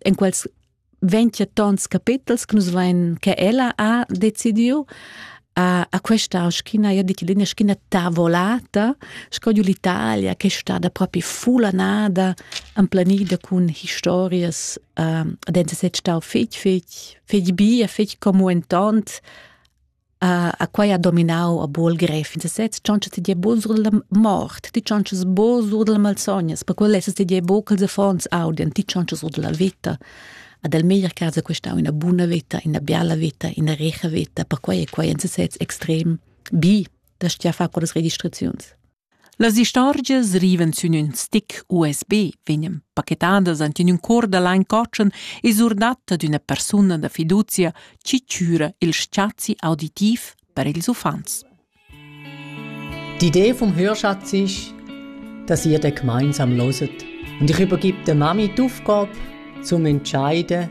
en quels 20 tons capitels che nus vein che ella ha decidiu a, a questa schiena, io dico linea schiena tavolata, scoglio l'Italia che è stata proprio fulanada, amplanita con storie uh, dense se stau fich fich fich bia fich como entont Uh, a quai ha dominau a bol gref in sesez choncha ti die bo sur la mort ti chonchas bo sur la malsognas per quel lesses ti dir bo ch'els affons audien ti chonchas sur la vita ad el meglier casa questa una buna vita una biala vita una recha vita per quai è quai in sesez extrem bi da stia fa con las registraziuns Las istorgias rivan sün ün stick USB, vegnan pachetadas ant in ün cour da lain cotschen e surdatta d'üna persuna da fiduzia chi chüra il spazi auditiv per ils uffants. D'idee vom Hörschatz ist, dass ihr da gemeinsam loset und ich übergebe der Mami die Aufgabe, zum entscheiden,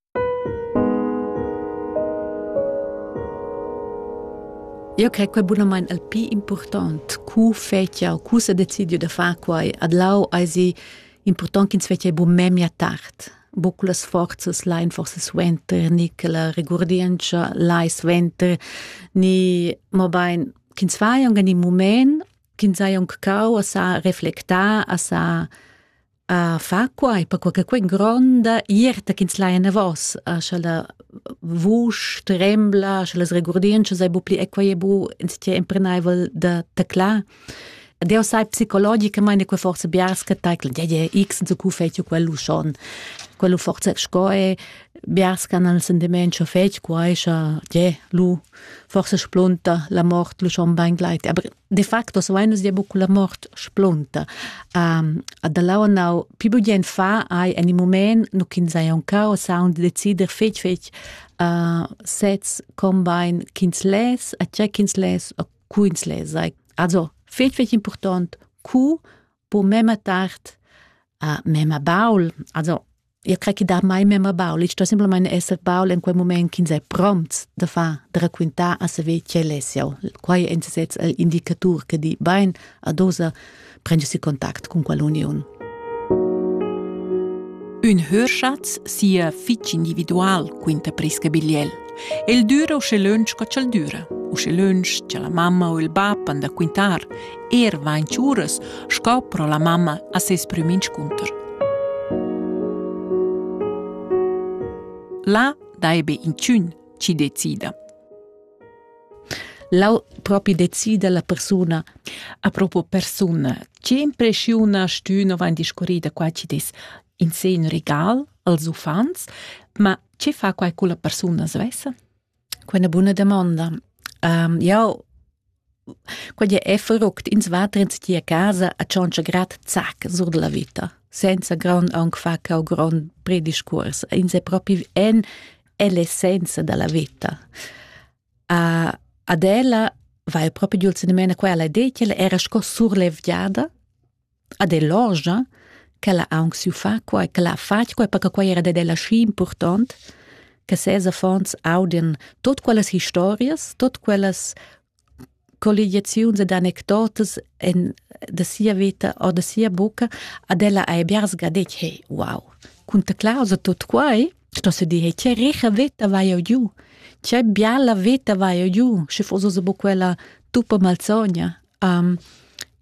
Eu cre que bunamain il pii important cu fetschia cu s'ha decidieu da far quai. Adlau ais important ch'ins fetschia bu memia tard. Bu cu las forzas lain forsa suenter, ni che la regurdientscha lai suenter, ni mobain ch'ins faja aunc in mumaint, ch'ins haja aunc cau a sa reflectar, a sa a fa quai per quai che quei gronda ierta ch'ins lai enavos a scha la vusch trembla scha las regurdientschas ei bu pli e quei e bu ins ti emprenaivel da teclar Deo sai psicologicamente che forse biarska taikl ja ja x so ku fetio quello schon quello forse sco e biarska nel sentiment scho fet quai scha ja lu forse splunta la mort lu schon bein gleit aber de facto so nus dia buccu la mort splunta um, da lau nau pi bugien fa ai en in moment nu kin sai un cao sound decider fetg fetg uh, sets combine kins les a che kins les a kuins les ai also fetg fetg important ku po mema tard uh, mema baul also Eu cre chi dà mai memma baul, ich sto simplamaing esser baul in quel mumaint ch'ins è prompts da far, da raquintar a saver quel es jau. Quai è in sesez il indicatur che di bain, adosa prendesi contact con quell'uniun. Ün hörschatz sia fich individual quinta presca bigliel. El düra usche lönch co ch'el düra. Usche lönch cha la mamma o il bap han da quintar Er vain tschüras sco pro la mamma a ses prüm inscunter. Là daibe inchün chi decida. Lau propi decida la persuna a proprio persuna. Che impressiona stüna vain discorrida qua ci dis in sen regal als uffants, ma che fa quai con la persuna svessa? Quella buna damonda. Um, jau quegl è verruckt ins va trens ti a casa a tschontscha grad zac sur della vita senza grond aunc fa cau grond prediscurs ins è propi en l'essenza della vita a ad ella va il proprio giul senemena quella de che era sco surlevgiada ad ell'orgia ch'ella ha aunc siu far quei ch'ella ha fatg quei perche quei era dad ella schi impurtont che ses affons audien tot quellas historias, tot quellas colligiaziuns ed anecdotas en da sia veta o da sia bucca ad ella ei biars ga detg hey wow cun ta clausa tot quei sto se dir hey che richa veta vai eu giu che biala veta vai eu giu sche foss buca quella tuppa malsogna um,